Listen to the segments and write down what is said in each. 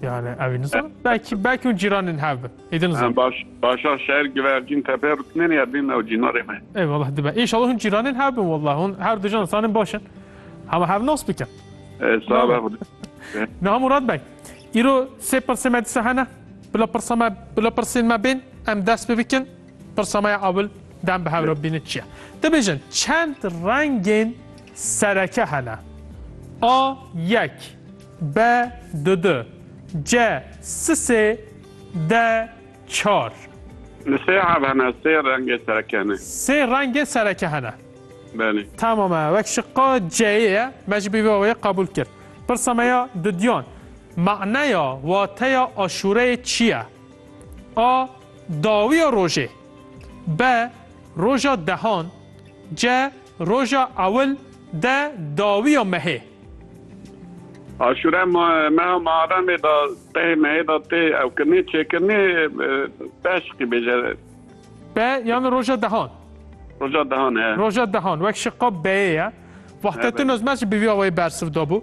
Yani evî nizan. Belki belki un cîranên hev bin. Êdin nizan. Baş başa şer givercîn tepe rutnên ya bin ew cînarê me. Eyvallah dibe. İnşallah un cîranên hev bin wallah. Un her dujan insanên başin. Hema hev nas bikin. Sağ ol. Naha Murat Bey. İro se pirse me dise hene. Bila pirsa me bila pirsên me bên em dest bi bikin. Pirsa me ya abil dem bi hevra bîne çiye. Dibêjin çend rengên sereke hene. A yek. Be du du. Ce si sê. De çar. Li sê hev hene, sê rengê sereke hene. Sê rengê sereke hene. Belê. Tamam e. Wek şiqa C'yê ye. Me jî bi vê awayê qebûl kir. Pirsa me ya dudiyan, Maneya, wateya aşûreyê çi ye? A. Dawiya rojê. B. Roja dehan. C. Roja ewil de dawiya mehê. Aşure meha Muharremê de tehê mehê de tê ewkirinê, çêkirinê beş qî bêje. Be yan roja dehan. Roja dehan he. Roja dehan wek şiqa beyê ye. Wahtettin Ozmez jî bi vî awayî bersiv dabû.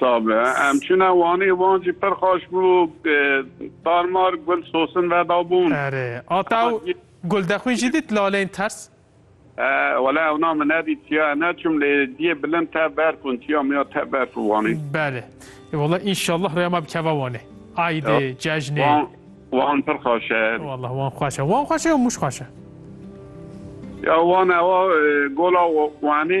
Sabe. Em çûne Wanê. Wan jî pir xweş bû. Tarmar gul sosin vedabûn. Erê. A taw Guldexwîn jî dît laleyên ters? Wele ewna min nedît. Çiya ne çûm lê diyê bilind tev berf bûn. Çiya miya tev berf û Wanê. Belê. Ê wele înşallah rêya me bikeve Wanê. Eydê, cejnê. Wan pir xweş e. Wele Wan xweş e. Wan xweş e ya Mûş xweş e? Ya Wan ew a gola Wanê.